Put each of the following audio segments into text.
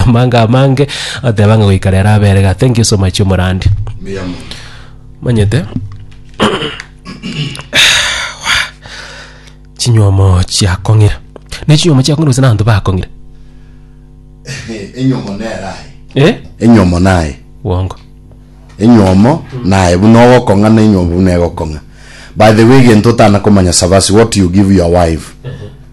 Amanga amange oteba ng'a goika rero abere iga. Thank you so much omorandi. Mbuya mono. Manyete chinywomo chiakong'ire ne chinywomo chiakong'ire gose nabanto bakong'ire Enyomo nere aye. eh? Enyomo naye. Bwongo enyomo naye buna ogokong'a na enyomo buna egokong'a by the way egento otana komanya sabasi what you give your wife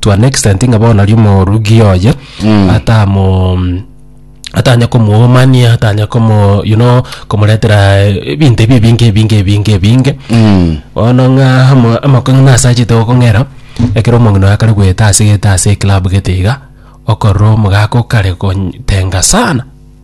to an extent ng'a bono aria omorugi oye atamo atanya komuomania atanya komo you know komoretera eh, ebinto ebi ebinge ebinge ebinge ebinge Mm. bono ng'a amo- amako ng'a nasachete gokong'era ekero omong'ina oye akare goeta ase gete ase eclub gete iga okorora omogaka okare gotenga sana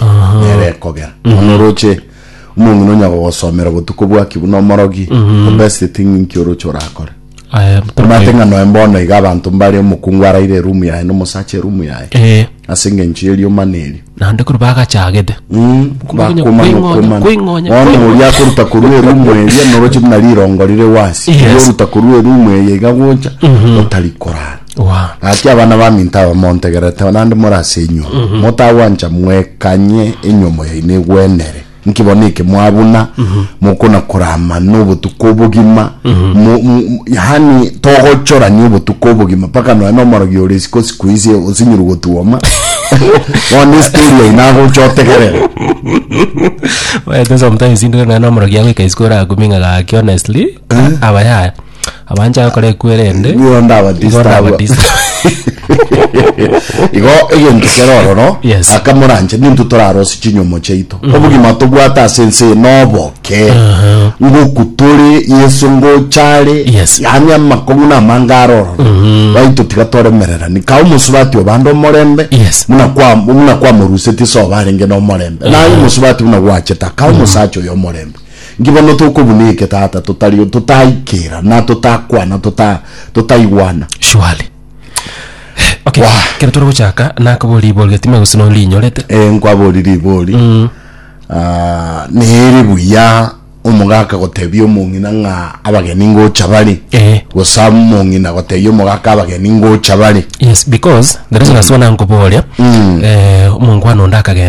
omotieneti nere ekogera bono oroche omong'ina onya gogosomera obotuko bwaki buna omorogi the best thing inki oroche orakore Aya, mpaka- omate ng'a noe mbono iga abanto mbare omokungu araire erumu yaye na omosacha erumu yaye Eh, ase eng'encho ye rioma na erio naende korwa bagachagete Mm, Okonya bakomana koingonya, okomana. koingonya, Bono koingonya. oria akoruta korwa erumu eria noroche buna rirongo rire gwasi Yes. oria oruta korwa erumu eye iga gocha otari korara Oa. Gaki abana baminto aba montegerete, naende more ase inywe, motagwancha mwekanye enyomo yaino egwenere, nki bono eke mwabuna mokonakora amano obotuko obogima, mo- mo- mo- yaani togochorania obotuko obogima mpaka nonya na omorogi ore isiko siku ise osinyuru gotuoma bono estori yaino agocha otegerere Oete sometimes intwe nonya na omorogi agoika isiko orakuming'a gaki honestly, aba yaya. Abanchaya gokora ekwerende. Nigo ndabatista Nigo abwo. ndabatista. igo egento kero ororo Yes. akamoranche nintu torarosi chinyomo chiaito obogima tobwate ase ense eye noboke ngoku tore yeso ngochare Yes. yaani amakong'u na amanga are ororo baito tiga toremererani ka omosubati obande omorembe Yes. muna kwa- muna kwamorusetie soba arenge nomorembe naye omosubati buna gwacheta ka omosacha oyo omorembe Nki bono tokobuna eke, tata, totari, totaikera, na totakwana, tota, totaigwana? Surely. Okay, Wah. kero tore gochaka nakabori ibori gati me gose no rinyorete. Eh, nkwabori ribori. Mm. Ah, nere buya omogaka gotebia omong'ina ng'a abageni ngocha bare. Eh. Gose omong'ina gotebia omogaka abageni ngocha bare. Yes, because the reason as well nankoboria, eh, omongwana onde akagenda.